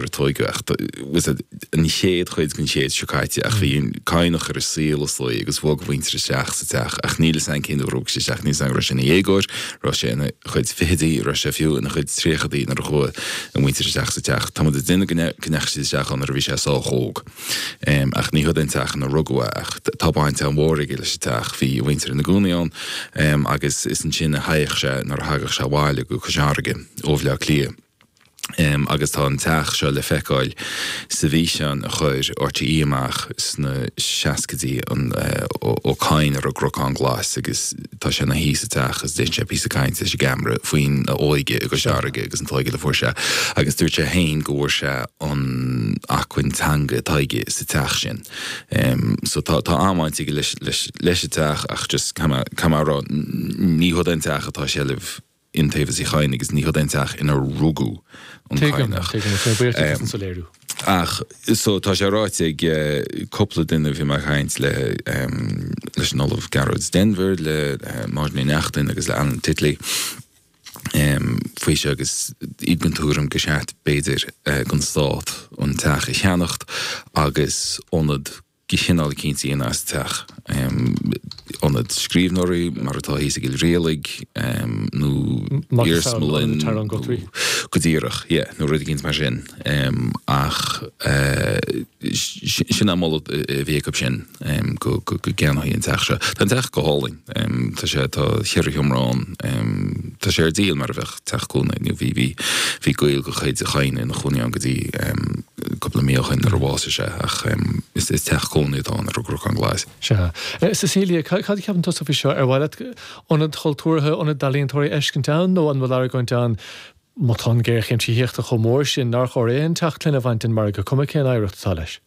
Ar tógadh, ach tá, as I said, an chéad chuid den chéad seo caite ach bhí an Cadhnach ar an saol, is dóigh, agus bhog a mhuintir isteach sa teach ach níl a fhios a'm cén uair a bhog sé isteach, níl a fhios a'm raibh sé ina dhéagóir, raibh sé ina chuid fichidí, raibh sé fiú ina chuid tríochaidí nuair a chuaigh a muintir isteach sa teach. Táimid ag déanamh go, go ndeachaigh siad isteach ann nuair a bhí sé sách óg. Ach ní hiod é an teach ina rugadh é ach tá baint an-mhór aige leis an teach, bhí a mhuintir ina gcónaí ann agus is ansin a théadh sé nuair a thagadh sé abhaile go Cois Fharraige ó Bhleá Cliath. agus tá an teach seo le feiceáil sa bhfíseán a chuir RTÉ amach sna seascaidí, an Ó Cadhain ar an gCnocán Glas agus tá sé ina shuí sa teach agus déanann sé píosa caint leis an gceamara faoin óige i gCois Fharraige agus an tógáil a fuair sé agus dúirt sé féin go bhfuair sé an acmhainn teanga atá aige sa teach sin. So tá tá an-bhaint aige leis leis leis an teach ach just caithfidh mé a rá ní hiod é an teach atá i seilbh Iontaobhas Uí Chadhain agus ní hiod é an teach ina rugadh an Cadhnach. Tuigim, tuigim, is tá mé buíoch duit as an soiléiriú. Ach so tá sé ráite ag cúpla duine a bhí mé ag caint le leis an Ollamh Gearóid Denvir, le Máirín Ní Neachtain agus le Alan Titley faoi seo agus iad den tuairim gur cheart b'fhéidir don Stát an teach a cheannacht agus ionad de chineál eicínt a dhéanamh as an teach, ionad scríbhneoirí, mar atá thíos i gCill Rialaigh, nó iarsmalann, nó go díreach, yeah, nó rud éicint mar sin. Ach sin an moladh a bhí acu sin, go gceannófaí an teach seo. Tá an teach go hálainn. Tá sé, tá cheithre sheomra ann. Tá sé ar díol mar a bheadh teach cónaí. Bhí, bhí, bhí gaol de chuid Uí Chadhain ina chónaí ann go dtí cúpla mí ó shin nuair a bhásaigh sé ach is, is teach cónaí atá ann ar an gCnocán Glas. Sea. Cecilia, cad, cad a cheapann tusa faoi seo? Ar mhaith leat ionad chultúrtha, ionad d'ealaíontóirí a fheiscint ann nó an bhfuil argóint ann, má tá an géarchéim tithíochta chomh mór sin, nár chóir aon teach clainne a bhaint den margadh, cuma cén oidhreacht atá leis?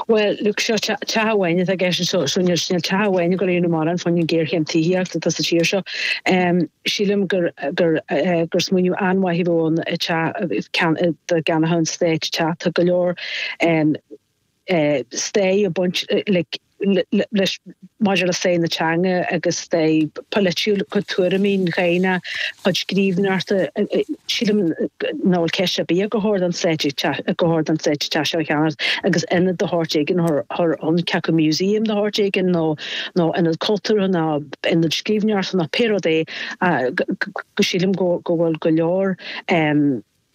Bhuel, look, seo teach amháin atá i gceist anseo, so níl teach amháin i gConamara chun an géarchéim tithíochta atá sa tír seo. Sílim gur, gur, gur smaoineamh an-mhaith a bheadh ann teach, dá gceannódh an Stát an teach. Tá go leor stair ag baint le, leis maidir le stair na teanga agus stair pholaitiúil chuid tuairimí, a chuid scríbhneoireachta. Sílim nach bhfuil ceist ar bith ach gur cheart don Stát an teach seo a cheannacht agus ionad de shórt éigin, cé acu museum de shórt éigin nó ionad cultúrtha ná ionad scríbhneoireachta ná pé rud é go sílim go bhfuil go leor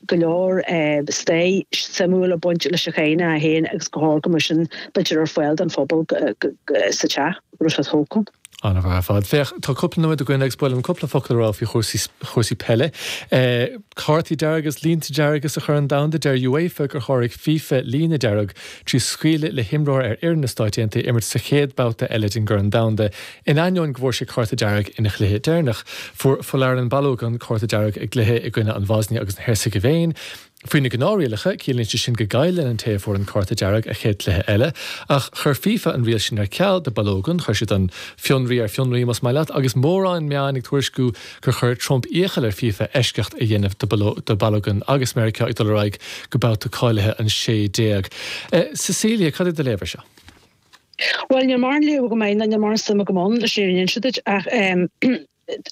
go leor stair shuimiúil ag baint leis an gceann sin ann, agus go háirithe mar sin bítear ar fáil don phobal sa teach roimh siad thógtha. An-mhaith ar fad. Féach, tá cúpla nóiméad againn agus ba mhaith liom cúpla focal a rá faoi chúrsaí peile. Cártaí dearga agus línte dearga sa Chorn Domhanda, deir UEFA gur sháraigh fifa líne dearg trí scaoileadh le himreoir ar fhoireann na Stáit Aontaithe imirt sa chéad babhta eile den Chorn Domhanda In ainneoin go bhfuair sé cárta dearg ina chluiche deireanach, fuair Folarin Balogun cárta dearg i gcluiche i gcoinne na Boisnia agus na Heirseagaivéine. Faoi na gnáthrialacha, ciallaíonn sé sin go gcailleann an té a fuair an cárta dearg a chéad chluiche eile, ach chuir fifa an riail sin ar ceal do Balogun. Chuir siad an fionraí ar fionraí, más maith leat, agus mórán meáin ag tuairisciú gur chuir Trump iachall ar fifa eisceacht a dhéanamh do Balogun agus Meiriceá ag dul ar aghaidh go babhta cáilithe an 16. Cecilia, cad é do léamh air seo? Bhuel, níl mórán léamh agam air, ná níl mórán suim agam ann, leis an fhírinne a inse duit, ach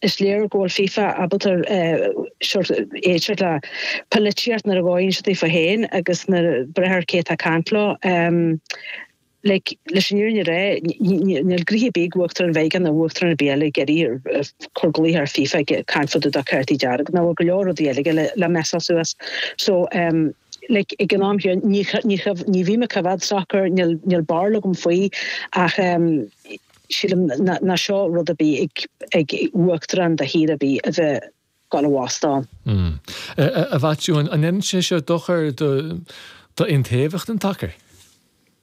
is léir go bhfuil FIFA ábalta sórt éigin sórt le polaitíocht nuair a fhóireann sé do FIFA féin agus ag brath ar cé atá ag caint leo. Like, leis an fhírinne a rá, níl gnoithe ar bith ag Uachtarán Mheiriceá ná Uachtarán ar bith eile ag iarraidh a chur glaoch ar FIFA ag caint fá do do chártaí dearga agus nach bhfuil go leor rudaí eile aige le messáil suas. So, Like, ag an am seo ní, ní, ní bhím ag coimhéad sacair, níl, níl barúil agam faoi ach sílim ná, ná seo rud ar bith ag, ag Uachtarán de thír ar bith, a bheith gabháil a bhacáil. A Mhaitiú, an ndéanann sé seo dochar do, do iontaofacht an tsacair?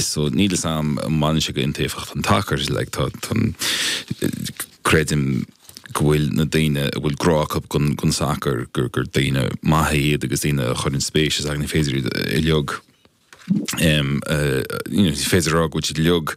so níl a fhios agam an mbaineann sé go iontaofacht an tsacair is like tá tá creidim go bhfuil na daoine a bhfuil grá acu gon sacar gur gur daoine maithe iad agus daoine a chuireann spéis is ag ní féidir iad a leag em uh, you know, ní féidir rá go bhfuil siad uilig